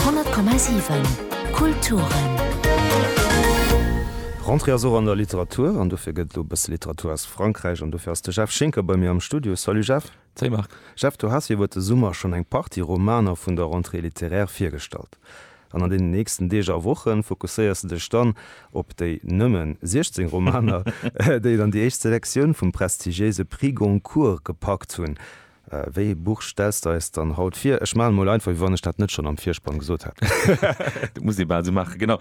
100,7 Kulturen. D'Rentrée ass och an der Literatur an dofir gëtt et elo e bësse Literatur aus Frankräich an dofir ass de Jeff Schinker bei mir am Studio. Salut Jeff. Salut Marc. Jeff, du has jo iwwer de Summer schonn eng Partie Romaner vun der Rentrée littéraire virgestallt an an deenen nächsten Deeg a Woche fokusséiers de dech dann op déi nëmme 16 Romaner, déi et an déi éischt Selektioun vum prestigiéise Prix Goncourt gepackt hunn. Wéi ee Buch stells de eis dann haut vir? Ech maachen emol einfach, wéi wann ech dat net schonn am Virspann gesot hätt. Dat muss ee bal esou maachen, genau.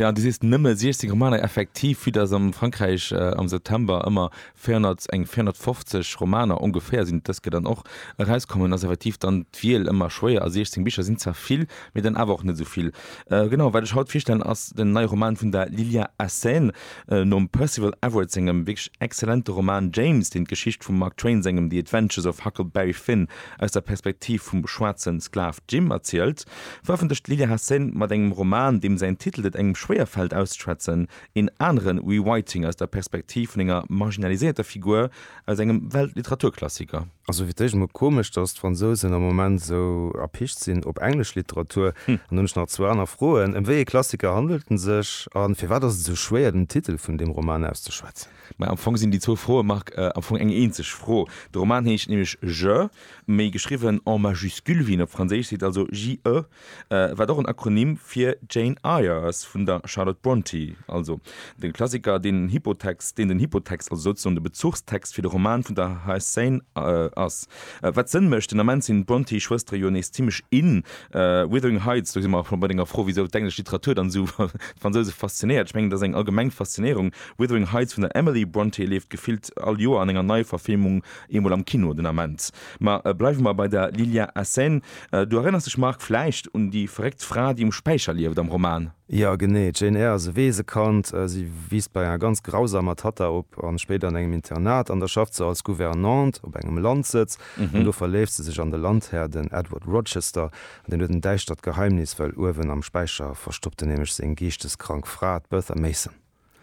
Jo, du sees nëmme 16 Romaner. Effektiv, vue dass am Frankräich am September ëmmer 400, eng 450 Romaner ongeféier sinn, dës Kéier dann och erauskommen, ass effektiv dann d'Wiel ëmmer schwéier. A 16 Bicher sinn zwar vill, mee dann awer och net esou vill. Genau, wat ech haut virstellen, ass den neie Roman vun der Lilya Assène. Nom Percival Everett sengem wierklech exzellente Roman James, deen d'Geschicht vum Mark Twain sengem The Adventures of Huckleberry Finn aus der Perspektiv vum schwaarze Sklav Jim erzielt, verëffentlecht d'Lilya Hassen mat engem Roman, deem säin Titel et engem schwéier fält auszeschwätzen, een anere Rewriting aus der Perspektiv vun enger marginaliséierter Figur, aus engem Weltliteraturklassiker. Ass sou fir d'éischt emol komesch, dass d'Fransousen am Moment sou erpicht sinn op englesch Literatur. An dann hunn ech nach zwou aner Froen, Ëm wéi ee Klassiker handelt en sech? A firwat ass et esou schwéier, den Titel vun deem Roman auszeschwätzen? Mä am Fong sinn déi zwou Froe, Marc, am Fong eng eenzeg Fro. De Roman heescht nämlech Je, méi geschriwwen en majuscule wéi een op Franséisch seet, also JE, wat och en Akronym fir Jane Eyre ass, vun der Charlotte Brontë, also de Klassiker, deen den Hypotext, deen den Hypotext, also souzesoen de Bezuchstext fir de Roman vun der Hsane ass. Wat Sënn mécht, den Ament sinn d'Brontë-Schwëstere jo nees zimmlech in. Wuthering Heights, do si mer scho bei denger Fro, wisou d'englesch Literatur dann esou d'Fransouse faszinéiert, ech mengen, dat ass eng allgemeng Faszinéierung. Wuthering Heights vun der Emily Brontë leeft gefillt all Joer an enger Neiverfilmung eemol am Kino den Ament. Ma bleiwe mer bei der Lilya Hsane. Du erënners dech, Marc, vläicht un déi verréckt Fra, déi um Späicher lieft am Roman? Jo, genee. D'Jane Eyre ass e Weesekand. Si wiisst bei enger ganz grausamer Tatta op a spéider an engem Internat an da schafft se als Gouvernante op engem Landsëtz. An do verléift se sech an de Landhär, den Edward Rochester. An deen huet en däischtert Geheimnis, well uewen am Späicher verstoppt en nämlech seng geeschteskrank Fra, d'Bertha Mason.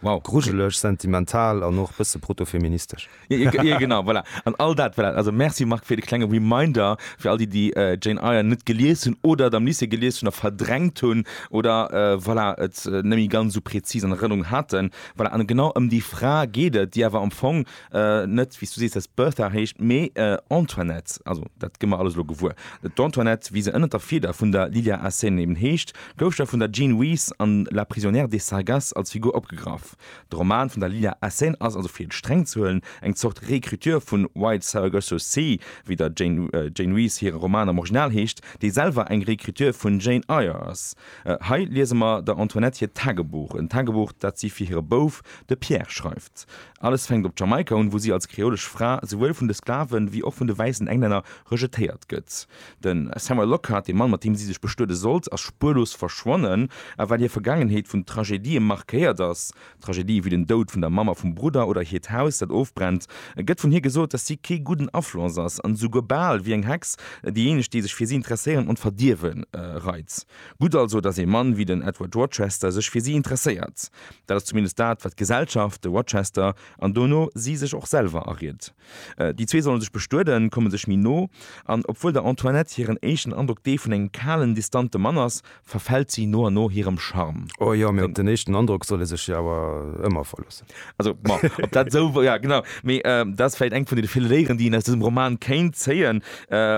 Wow. Grujeleg, sentimental an och bësse protofeministesch. Jo, genau, voilà. An all dat, voilà. Also merci Marc fir de klenge Reminder fir all déi, déi Jane Eyre net gelies hunn oder et am Lycée gelies hunn a verdrängt hunn oder voilà et net méi ganz esou präzis an Erënnerung haten. Voilà, an genau ëm déi Fra geet et, déi awer am Fong net wéi s du sees, dass Bertha heescht, mee Antoinette, also dat gi mer alles elo gewuer. D'Antoinette, wéi se ënnert der Fieder vun der Lilia Assayne eben heescht, gouf da vun der Jean Rhys an La prisonnière de Sargasses als Figur opgegraff. De Roman vun der Lilia Assayne ass also, fir et streng ze huelen, eng Zort Réécriture vun White Saragosso Sea, wéi der Jane Rhys hire Roman am Original heescht, dee selwer eng Réécriture vun Jane Eyre ass. Hei liese mer der Antoinette hiert Tagebuch, en Tagebuch, dat si fir hire Bouf, de Pierre, schreift. Alles fänkt op Jamaika un, wou si als kreolesch Fra souwuel vun de Sklaven, wéi och vun de wäissen Englänner rejetéiert gëtt. De Samuel Lockhart, de Mann, mat deem si sech bestuede sollt, ass spuerlos verschwonnen. A well hir Vergaangenheet vun Tragedië markéiert ass, Tragedië wéi den Doud vun der Mamm a vum Brudder oder hiert Haus, dat ofbrennt, gëtt vun hir gesot, dass si kee gudden Afloss ass an esouguer bal wéi eng Hex déijéineg, déi sech fir si interesséieren, an d'Verdierwe reit. Gutt also, dass ee Mann wéi den Edward Rochester sech fir si interesséiert. Dat ass zumindest dat, wat d'Gesellschaft, de Rochester an dono si sech och selwer ariet. Déi zwee solle sech bestueden, komme sech méi no, an obwuel der Antoinette hiren éischten Androck dee vun engem kalen, distante Mann ass, verfält si no an no hirem Charme. O jo, mee op den éischten Androck soll ee sech jo awer ëmmer verloossen. Also, ma ob dat esou wor? Ja, genau. Mee dat ass vläicht eng vun deene ville Léieren, déi een aus dësem Roman kéint zéien.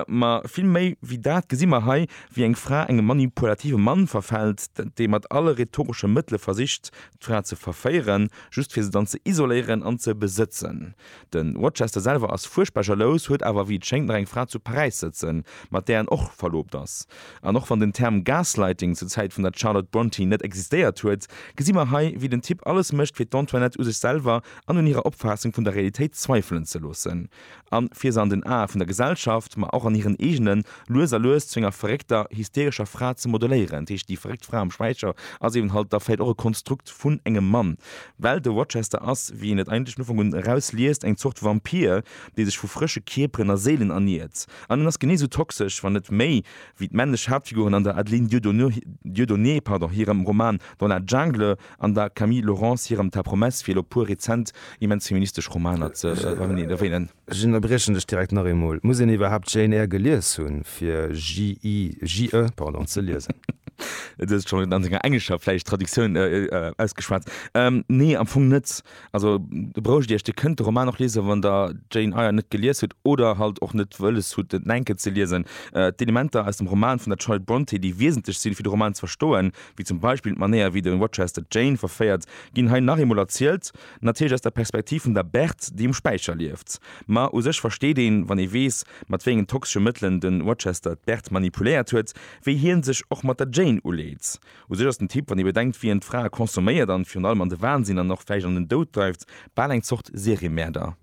Ma vill méi wéi dat gesi mer hei, wéi eng Fra engem manipulative Mann verfält, dee mat alle rhetoresche Mëttele versicht, d'Fra ze verféieren, just fir se dann ze isoléieren an ze besëtzen. De Rochester selwer ass fuerchtbar jalous, huet awer, wéi et schéngt, nach eng Fra zu Paräis sëtzen, mat där en och verloobt ass. An och wann den Term Gaslighting zur Zäit vun der Charlotte Brontë net existéiert huet, gesi mer hei, wéi den Typ alles mécht, fir d'Antoinette u sech selwer an un hirer Opfaassung vun der Realitéit zweifelen ze loossen. a fir se an den Ae vun der Gesellschaft, ma och an hiren eegenen, lues a lues zu enger verréckter, hysterescher Fra ze modeléieren. Dat heescht, déi verréckt Fra am Schwäizer ass eben halt da vläit och e Konstrukt vun engem Mann, well de Rochester ass, wéi een et eigentlech vun Ufank un erausliest, eng Zort Vampir, dee sech vu frësche Kierperen a Séilen erniert. An en ass genee esou toxesch, wann net méi, wéi d'männlech Haaptfiguren an der Adeline Dieudonné hirem Roman Dans la Jungle, An der Camille Laurence hirem Ta promesse fir elo puer rezent immens feministesch Romaner ze erwähnen. Ech ënnerbriechen dech direkt nach eemol. Muss een iwwerhaapt Jane Eyre gelies hunn, fir JE ze liesen? Du hues et schonn an denger englescher, vläicht, Traductioun ausgeschwat. Nee, am Fong net. Also, do braucht Dir iech, Dir kënnt de Roman och liesen, wann Der d'Jane Eyre net gelies hutt oder halt och net wëlles hutt, et enk ze liesen. D'Elementer aus dem Roman vun der Charlotte Brontë, déi wiesentlech sinn, fir de Roman ze verstoen, wéi zum Beispill d'Manéier wéi de Rochester d'Jane verféiert, ginn hei nach eemol erzielt, natierlech aus der Perspektiv vun der Berthe, déi um Späicher lieft. Ma u sech versteet een, wann ee weess, mat wéi engen toxesche Mëttelen de Rochester d'Berthe manipuléiert huet, wéi hien sech och mat der Jane uleet. U sech ass den Typ, wann ee bedenkt, wéi en d'Frae consomméiert an virun allem an de Wahnsinn an och vläicht an den Doud dreift, bal eng Zort Seriemäerder.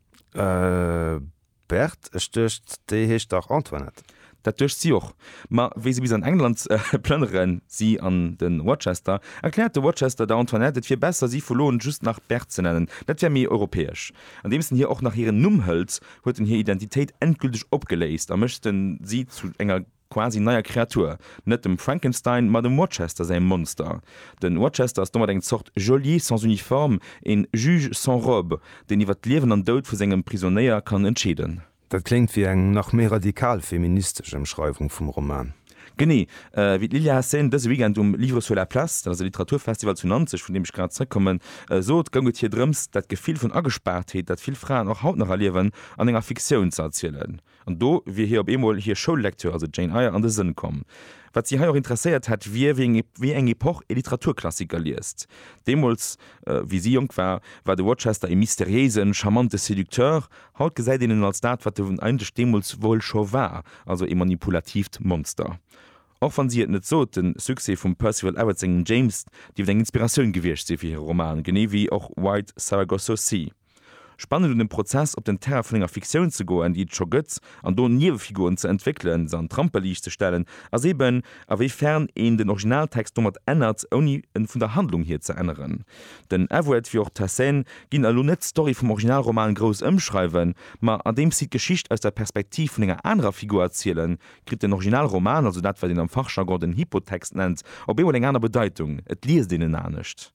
Bert, Ech duecht, déi heescht dach Antoinette? Dat duecht si och. Ma wéi se bis an England plënneren, si an de Rochester, erkläert de Rochester der Antoinette, et wier besser, si vu lo un just nach Bert ze nennen, dat wär méi europäesch. Andeems en hir och nach hiren Numm hëlt, huet en hir Identitéit endgülteg opgeléist a mécht si zu enger. quasi neier Kreatur, net dem Frankenstein, ma dem Rochester säi Monster. Den Rochester ass domat eng Zort Geôlier sans uniforme, een Juge sans robe, deen iwwert d'Liewen an Doud vu sengem Prisonéier kann entscheeden. Dat kléngt wéi eng nach méi radikal feministesch Emschreiwung vum Roman. Genee wéi d'Lilya Hacén dëse Weekend um Livres sur la place, dat ass e Literaturfestival zu Nanzeg, vun deem ech grad zeréckkommen, sot, goung et hir drëms, dat Gefill vun Agespaartheet, dat vill Fraen och haut nach erliewen, an enger Fiktioun ze erzielen. An do wier hir op eemol hir Schoullektür, also d'Jane Eyre, an de Sënn komm. Wat si hei och interesséiert hätt, wier, wéi eng Epoch ee Literaturklassiker liest. Deemools, wéi si jonk war, war de Rochester ee mysteriéisen, charmante Séducteur. Haut gesäit een en als dat, wat en eigentlech deemools wuel scho war, also ee manipulatiivt Monster. Och wann si et net sot, de Succès vum Percival Everett sengem James dierft eng Inspiratioun gewiescht sinn fir hire Roman, genee wéi och White Saragosso Sea. Spannend un dem Prozess op den Terrain vun enger Fiktioun ze goen, déi et scho gëtt, an do Niewefiguren ze entwéckelen, se an d'Ramperliicht ze stellen, ass eben, a wéi fern een den Originaltext domat ännert, ouni en vun der Handlung hier ze änneren. Den Evert wéi och d'Hessein ginn elo net d'Story vum Originalroman grouss ëmschreiwen, ma andeems si d'Geschicht aus der Perspektiv vun enger anerer Figur erzielen, kritt den Originalroman, also dat wat een am Fachjargon den Hypotext nennt, op eemol eng aner Bedeitung, et liest een en anescht.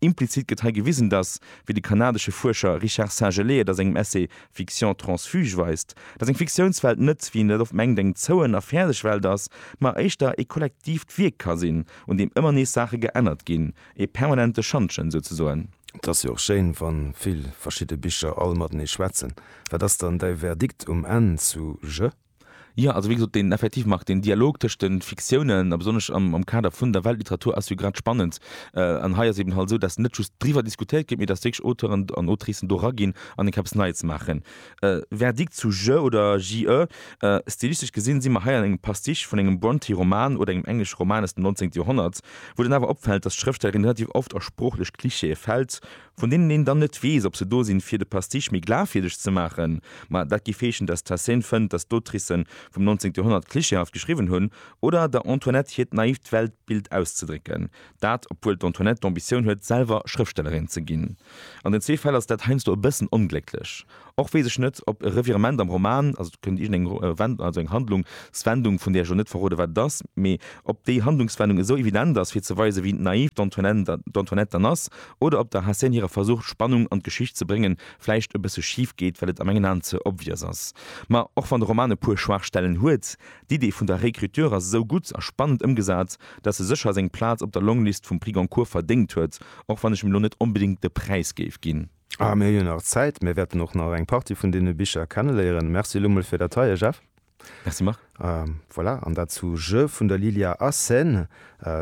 Implizit gëtt hei gewisen, datt, wéi de kanadesche Fuerscher Richard Saint-Gelais et a sengem Essay Fiction transfuge weist, datt eng Fiktiounswelt net, wéi een dat oft mengt, eng zouen a fäerdeg Welt ass, ma éischter ee kollektiivt Wierk ka sinn, un deem ëmmer nees Saache geännert ginn, ee permanente Schantjen souzesoen. Et ass jo och schéin, wa vill verschidde Bicher all matenee schwätzen. Wat ass dann däi Verdikt um Enn zu Jeux? Jo, also wéi gesot, deen, effektiv, Marc, deen Dialog tëscht de Fiktiounen, a besonnesch am Kader vun der Weltliteratur, ass jo grad spannend. An hei ass eben halt esou, datt net just driwwer diskutéiert gétt, mee datt wierklech Auteuren an Autricen do eraginn an eng Kéier eppes Neies maachen. Verdikt zu Je oder JE, Stilistesch gesinn si mer hei an engem Pastiche vun engem Brontë-Roman oder engem englesche Roman aus dem 19. Joerhonnert, wou dann awer opfält, datt d'Schrëftstellerin relativ oft a sproochlech Klischeeë fält, vun deenen een dann net weess, ob se do sinn, fir de Pastiche méi glafwierdeg ze maachen, ma dat gi Feeschen, dass d'Hesséne fënnt, dass d'Autricë vum 19. Joerhonnert klischeehaft geschriwwen hunn, oder der Antoinette hiert naift Weltbild auszedrécken, dat obwuel d'Antoinette d'Ambitioun huet, selwer Schrëftstellerin ze ginn. An den zwee Fäll ass dat heiansdo e bëssen onglécklech. Och weess ech net, ob e Revirement am Roman, also et kënnt iergendeng Wend-, also eng Handlungswendung, vun där ech elo net verrode wat et ass, mee ob déi Handlungswendung esou evident ass, fir ze weisen, wéi naiv d'Antoinette dann ass, oder ob der Hassen hirer Versuch, Spannung an d'Geschicht ze bréngen, vläicht e bësse schif geet, well et a mengen Aen ze obvious ass. Ma och wann de Roman e puer Schwaachstellen huet, d'Idee vun der Réécriture ass esou gutt a spannend ëmgesat, dass e sécher seng Plaz op der Longlist vum Prix Goncourt verdéngt huet, och wann ech em elo net onbedéngt de Präis géif ginn. Ah, mir hunn jo nach Zäit. Mir wäerten och nach eng Partie vun deene Bicher kenneléieren. Merci elo mol fir dat heie, Jeff. Merci Marc. Voilà, an dat zu Je vun der Lilia Assen.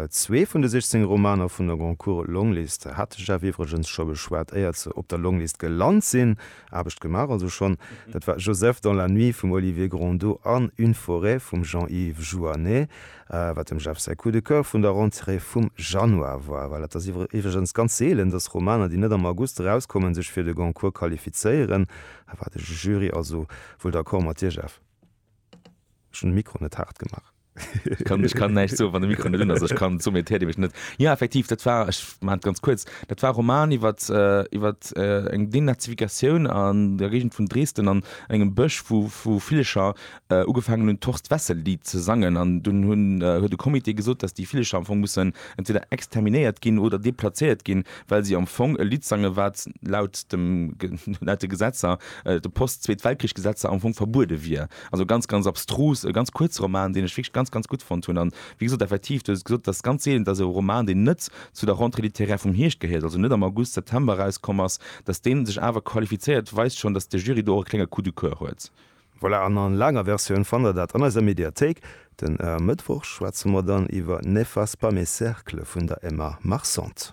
Zwee vun de 16 Romaner vun der Goncourt Longlist hat de Jeff iwwregens scho beschwat, éiert se op der Longlist gelant sinn. Aarbecht gemaach also schonn. Dat war Joseph dans la nuit vum Olivier Grondaud an Une forêt vum Jean-Yves Jouannet. Wat dem Jeff säi Coup de coeur vun der Rentrée vum Januar war. Well et ass iwwregens ganz seelen, datt Romaner, déi net am August erauskommen, sech fir de Goncourt qualifizéieren. Hei war de Jury also wuel d'accord mat dir, Jeff. Ech hunn de Mikro net haart gemaach. Ech kann näischt soen, wann de Mikro net un ass. Ech kann, soumet hiert ee mech net. Jo, effektiv, dat war, ech maachen et ganz kuerz, dat war e Roman iwwert, iwwert eng Denazifikatioun an der Géigend vun Dresden an engem Bësch, wou, wou Villcher ugefaangen hunn d'Horst Wessel Lidd ze sangen an dunn hunn huet e Comité gesot, dass déi Villecher am Fong mussen entweder exterminéiert ginn oder deplazéiert ginn, well si am Fong e Lidd sangen, wat laut dem laut de Gesetzer, de Post-Zweet-Weltkrich-Gesetzer am Fong verbuede wier. Also ganz ganz abstrus, e ganz kuerze Roman, deen ech wierklech ganz ganz gutt fonnt hunn. An wéi gesot, effektiv, du hues et gesot, et ass ganz seelen, dass e Roman, deen net zu der Rentrée littéraire vum Hierscht gehéiert, also net am August, September erauskomm ass, dass dee sech awer qualifizéiert, weist schonn, dass de Jury do och e klenge Coup du coeur huet. Voilà, an a laanger Versioun fannt der dat an eiser Mediathéik. Den Mëttwoch schwätze mer dann iwwer N'efface pas mes cercles vun der Emma Marcent.